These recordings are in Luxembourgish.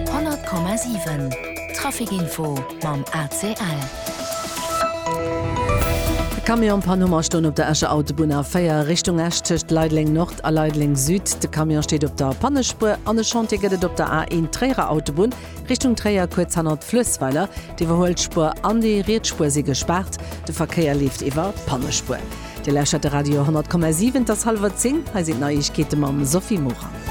100,7 Trafic Info mam ACL. E Camion an Panne huet stoen op der Escher Autobunn A4 Richtung Esch tëscht Leideleng Nord a Leideleng Süd. De Camion steet op der Pannespuer an e Chantier gëtt et op der A1 Tréierer Autobunn Richtung Tréier, kuerz hannert Fluessweiler. D'Iwwerhuelspuer an déi riets Spuer si gespaart, de Verkéier leeft iwwer d'Pannespuer. Dir lauschtert de Radio 10,7, et ass hallwer 10, hei sinn d'Neiegkeete mam Sophie Morang.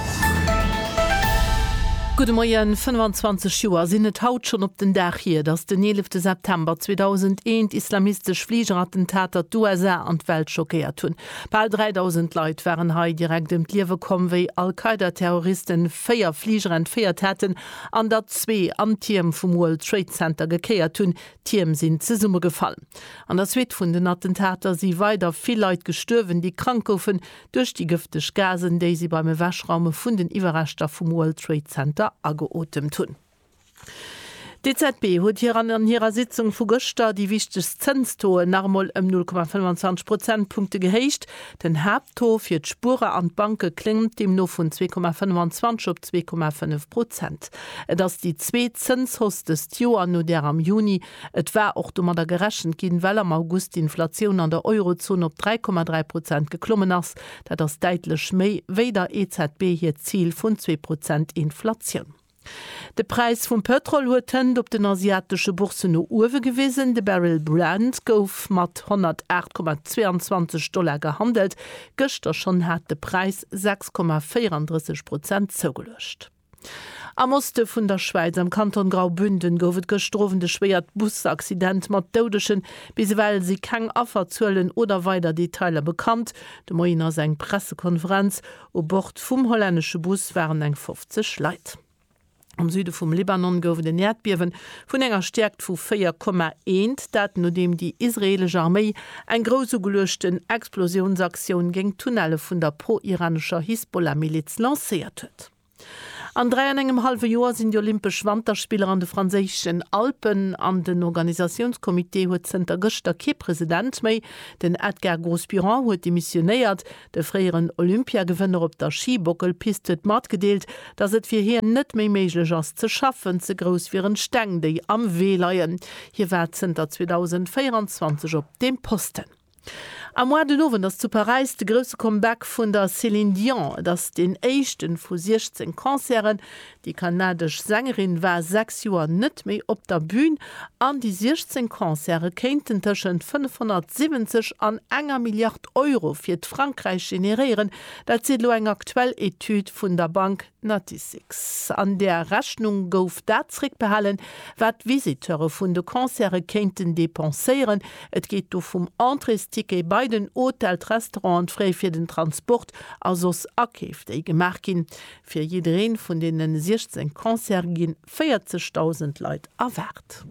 Gudde Moien, 25 Joer sinn et haut schonn op den Dag hier, datt den 11 September 2001 islamistesch Fligerattentater d'USA an d'Welt schockéiert hunn. Bal 3.000 Leit waren hei direkt ëm d'Liewe komm, wéi Al-Qaida-Terroristen véier Fliger entféiert haten an der zwee an d'Tierm vum World Trade Center gekéiert hunn, D'Tierm sinn zesummegefall. An der Suite vun den Attentater si weider vill Leit gestuerwen, déi krank goufen duerch déi gëfteg Gasen, déi si beim Ewechraume vun den Iwwerreschter vum World Trade Center ageotemt hunn. D'EZB huet hir an an hirer Sitzung vu gëschter déi wichtegst Zënstoen nach emol ëm 0,25 Prozentpunkte gehéicht. Den Haapttaux fir d'Spuerer an d'Banke klémmt deemno vun 2,25 op 2,5 Prozent. Et ass déi zweet Zënshausse dëst Joer, no där am Juni. Et war och domadder gerechent ginn, well am August d'Inflatioun an der Eurozon op 3,3 Prozent geklommen ass. Dat ass däitlech méi wéi der EZB hiert Zil vun zwee Prozent Inflatioun. De Präis vum Pëtrol huet d'Hënt op den asiatesche Bourssen no uewe gewisen. De Barrel Brent gouf mat 108,22 Dollar gehandelt. Gëschter schonn hat de Präis 6,34 Prozent zougeluecht. Am Oste vun der Schwäiz, am Kanton Graubünden, gouf et gëschter Owend e schwéiert Busaccident mat Doudegen. Bis ewell si keng Afferzuelen oder weider Detailer bekannt. De Moien ass eng Pressekonferenz U Bord vum hollännesche Bus waren eng 50 Leit. Am Süde vum Libanon gouf et en Äerdbiewe vun enger Stäerkt vu 4,1, dat nodeem déi israeelesch Arméi eng grouss ugeluechten Explosiounsaktioun géint d'Tunnelle vun der pro-iranescher Hisbollah-Miliz lancéiert huet. An dräi an engem hallwe Joer sinn déi Olympesch Wanterspiller an de franséischen Alpen, an den Organisatiounscomité huet zënter gëschter kee President méi. Den Edgar Grosburan huet demissionéiert. De fréieren Olympiagewënner op der Schibockelpist huet matgedeelt, datt et fir hien net méi méiglech ass ze schaffen, ze grouss wieren d'Steng, déi am Wee leien. Hie war zënter 2024 op deem Posten. Am Mois den Owend ass zu Paräis de grousse Comeback vun der Céline Dion. Et ass deen éischte vu 16 Concerten, Déi kanadesch Sängerin war 6 Joer net méi op der Bün an déi 16 Concerte kéinten tëschent 570 an enger Milliard Euro fir d'Frankräich generéieren. Dat seet elo eng aktuell Etüd vun der Bank Natixis. An där Rechnung gouf dat zeréckbehalen, wat d'Visiteure vun de Concerte kéinten depenséieren. Et geet do vum Entréesticket bei den Hotel, d'Restaurant, d'Frais fir den Transport a soss Akeef, déi gemaach ginn. Fir jiddereen vun deenen 16 Concerte ginn 40.000 Leit erwaart.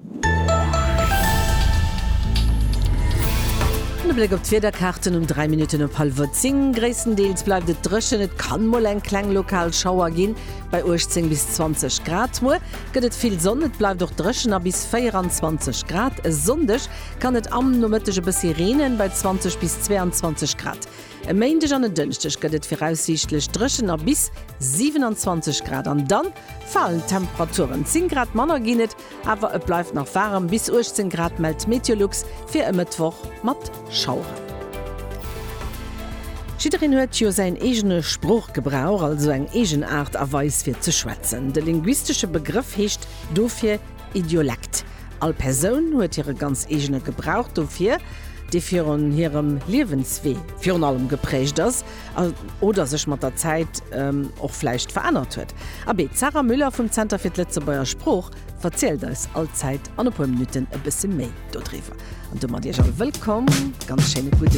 En Bléck op d'Wiederkaarten um 3 Minutten op hallwer 10. Gréisstendeels bleift et dréchen, et kann mol eng kleng lokal Schauer ginn bei 18 bis 20 Grad. Muer gëtt et vill Sonn, et bleift och dréchen a bis 24 Grad. E Sonndeg kann et am Nomëtteg e bëssi reenen bei 20 bis 22 Grad. E Méindeg an en Dënschdeg gëtt et viraussiichtlech dréchen a bis 27 Grad an dann falen d'Temperaturen. 10 Grad manner ginn et, awer et bleift nach waarem, bis 18 Grad mellt Meteolux fir e Mëttwoch mat Schaueren. Jiddereen huet jo säin eegene Sproochgebrauch, also eng eegen Aart a Weis fir ze schwätzen. De linguistesche Begrëff heescht dofir Idiolekt. All Persoun huet hire ganz eegene Gebrauch dofir, dee virun hirem Liewenswee virun allem geprägt ass oder sech mat der Zäit och vläicht verännert huet. Abee, d'Sarah Müller vum Zenter fir d'Lëtzebuerger Sprooch verzielt eis all Zäit an e puer Minutten e bësse méi dodriwwer. An domat Iech all wëllkomm, ganz schéine gudde.